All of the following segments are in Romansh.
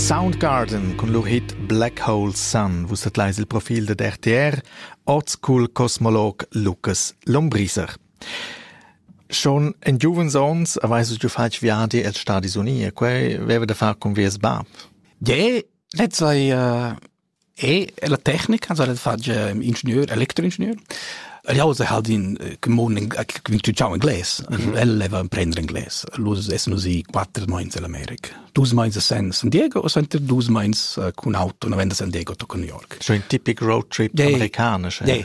Soundgarden cun lur hit Black Hole Sun vus tadleis il profil dad RTR, oz cul cosmolog Lukas Lombriser. Schon in giuvens ons aveis giu fatg viadi els Stadis Uniti e quei veva da far cun vies bab. Je, lezza ei uh, E la tecnica, also el fatg ingenieur, elektroingenieur. El jauza halt in commun instrucziun ingles. El leva imprender ingles. Lus essen usi quatter meins in Amerika. Dus meins a San Diego o senter dus meins cun auto, no venda San Diego to New York. So ein typic road trip amerikanisch. Yeah.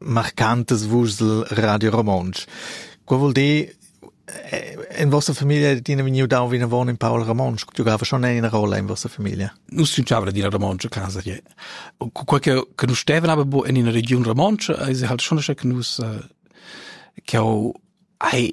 marcantas vuschs el Radio Romontsch. Quei vul dir, in vostra famiglia tina vegniu dau vinavon in Paul Romontsch, giugava schon ina rolla in vostra famiglia. Nus giugava d'ina Romontsch a casa che quei che che nus stevan aber bo in ina region Romontsch, ei se halt schon che nus eh, che ho ai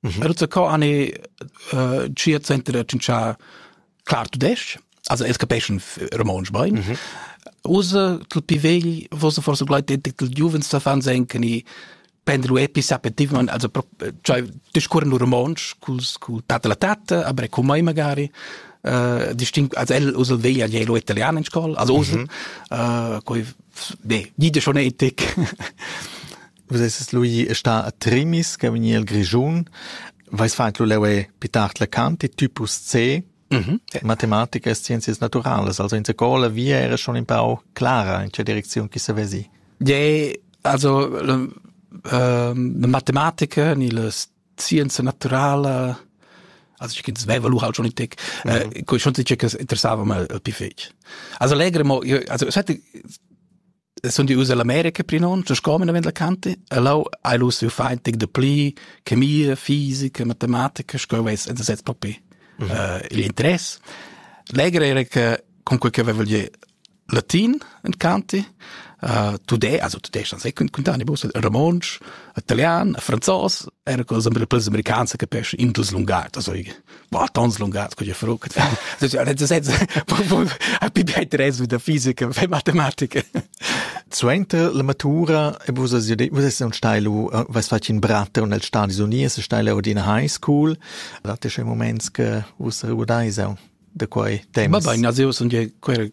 Mhm. Also co ani uh, chia center da cincià clar tudesc, also es capeschan romontsch bain. Mhm. Usa tul pi vegl, vosa forse gleit tel giuvens da fan senken i prendere epis apetivament, also cioè discurren lu romontsch culs cul tata la tata, aber cum mai magari uh, distinct, also el usa veglia gli lo italiano in scuola, also usa, mhm. uh, coi, ne, gide schon etic. Vus esses lu ì e sta a Trimis, che vegni el Grischun. Veis fat lu leu e pitart la canti typus C, Mhm. Matematica e scienzias naturalas. Also in scola via era schon in pau clara in che direcziun chi se vesi. Ja, also le, ehm, le matematica ni le scienza naturala also ich ins Wevel halt schon in Tech äh, schon sicher interessava mal el pi fetg also legre mo also es hätte sun di us all'America prinont, sco men avend la canti, e lau hai lu siu fein tic de pli, chemia, fisica, matematica, sco veis en sez propi mm -hmm. uh, il interess. Legre era che con quel che avevo gli latin in canti, uh, tudé, also tudé stand se kun kuntani bus, romansch, italian, franzos, era cosa per les americans che pesce indus lungar, also war tons lungas con je fruc happy better es da fisica ve matematica Suenter la matura e vus vus un stailu was fat in bratter nel Stadis Unies stile ordina high school date che moments che vus rudaisa da quei temps Ma bain, also io sono quel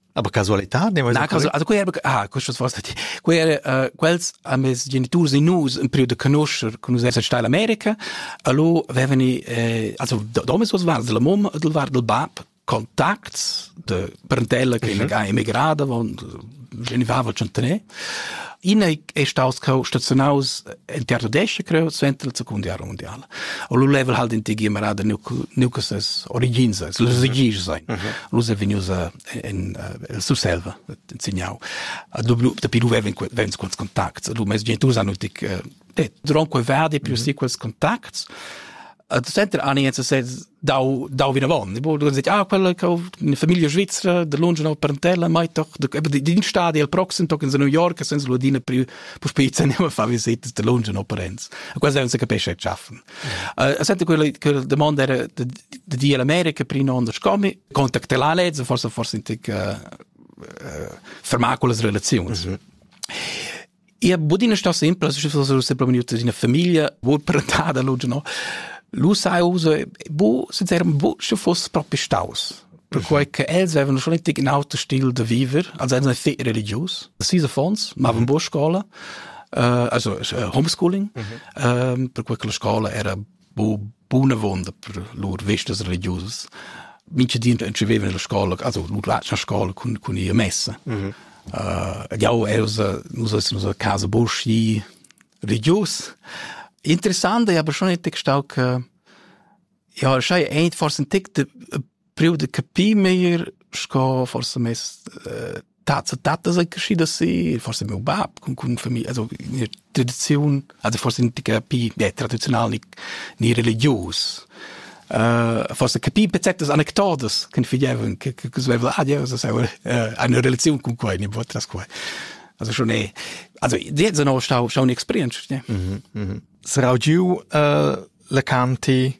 Aber casualità? Na, casu also quei era ah, questas forsa ti. Quei era uh, quels a mes geniturs e nus in periodo conoscer con nus essere stati in America, allora avevani eh, also domes was war della mom del war del bab contacts de parentella che mm -hmm. è emigrata, von genivava centene Ina è staus cheu stazionaus en teatro d'esce creu suenter la seconda guerra mondiala. O lu level halt in tgi marada nu nu que ses origins, ses origins sein. Lu è vegnius in el Surselva insegnau. A du dapi lu veven vens quels contacts, du mes gentus hanno tic det dronque verdi più si quels contacts et center ani jetzt se dau dau vina von bo du dit ah quella che in famiglia svizzera de lunge no parentella mai doch de din stadi al proxim tok in New York senza ludina più po spitze ne fa visite de lunge no parents a quasi non se capisce schaffen a sente quella quella domanda era de di America prima on scomi contactela lezza forse forse in tic fermaculas relazioni Ia bod ina stossa simpla, se propi vegniuta d'ina famiglia, bod parentada, luge, no. Lu sai uso, bo, sincerament, bo, sche foss propi staus. Perquai che els avevano schon richtig in auto stil de viver, also erano sehr religiös. Sis affons, mavan buca scola, uh, also uh, homeschooling, uh -huh. um, per cui che la scola era bunavonda per lur vistas religiusas. Mincha di entscheveva nella scola, also nu la scola cun cun ia messa. Mm -hmm. uh, jau els nus es nus a casa boschi religius. Interessant è aber schon ein Text auch ja, schei ein forse ein Text priu de capir meglier sco forse mes äh, tats e tatas ei geschieda si, forse meu bab con con familie, also in tradiziun, also forse nicht capir ja, tradizional ni, ni religius. Uh, forse capir pezetas anecdotas che figlievan che che svevel ah Dios das aber uh, eine Relation con quei ne vot das quei also schon eh also jetzt noch stau stau experience ne mhm mhm sarau giu uh, la canti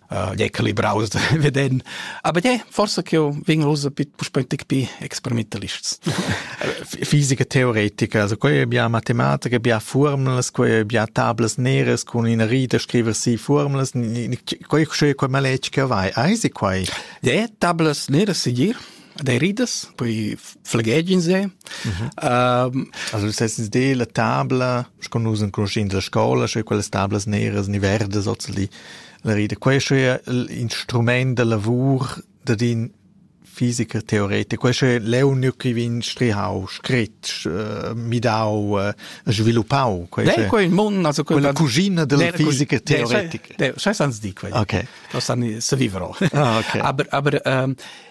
uh, equilibraus da veden. Aber ja, forse che io vegn usa bit puspöntig bi experimentalists. Fisica teoretica, also quei bia matematica, bia formulas, quei bia tablas neres con ina rita scriver si formulas, quei quei quei maletg che vai, eisi quai? Ja, tablas neres sigir. dei ridas, poi flegegin se. Mhm. Also sesses de la tabla, sco nus in cruschin della scola, sche quelle tablas neras ni verdas ozeli la rida. Questo è l'instrument del lavor da din fisica teoretica. Questo è l'unico che vien strihau, scritto, uh, midau, uh, sviluppau. Questo è quel mondo, also quella cugina della fisica teoretica. Sai sans di quello. Ok. Non sa se vivrò. Ah, ok. Aber, aber um,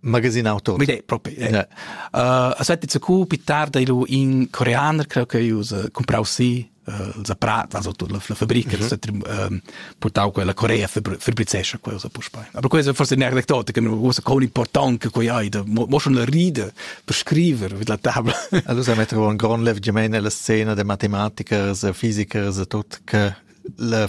Magasin auto. Mide, propi. Yeah. Uh, aspetti, zu cu più tarda ilu in coreaner, creo che io usa comprau sì uh, la prata, also la, la fabrica, mm -hmm. uh, portau quella Corea fabrizescia quella usa puspei. Aber quella è forse un'aneddote che mi usa con importante che io da mo schon ride per scrivere mit la tabla. Allora metto un gran lev gemeine la scena de matematiker, de physiker, de tot che la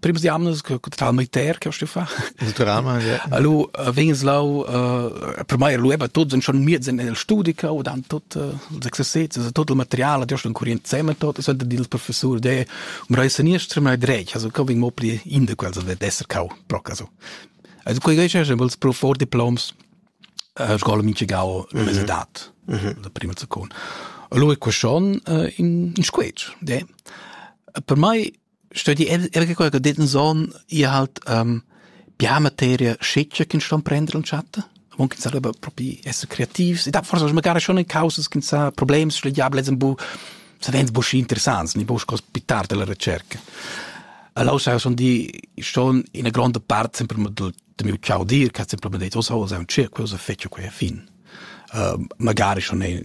primas jamnas che total militär che sto fare naturalmente ja. allora vegnes lau uh, per mai lu eba tots en schon miez en el studica o dan tot uh, els exercizis also tot il materiale der schon kurient zusammen tot so der dil professor de um rei seniestra mai dreig also ko ving mo pli in de quels wird esser kau proc also also quei geisch schon els pro for diploms uh, scola minchigau l'università mm -hmm. la prima secon allora ko schon uh, in in squetsch de per mai sto di er che qualche ditten son ihr halt ähm, bia materia schiccia che ston prender und chatta Avon che sa propi essere kreativs. Ich dachte forse, magari schon in causas che sa problems schlegiabili sind bu savens bu interessants, ni bu pitar della ricerca. Allora sono di schon in una grande parte sempre del, del mio ciao dir che ha sempre detto, oh, so, è un circo, cosa fece qui a fin. Uh, magari schon in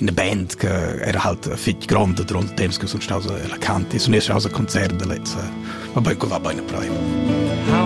eine Band che era halt fitg gronda durante temps che sun staus a Canti, sun esser staus a concert da lezza. Vabbè, quella va bene prima. How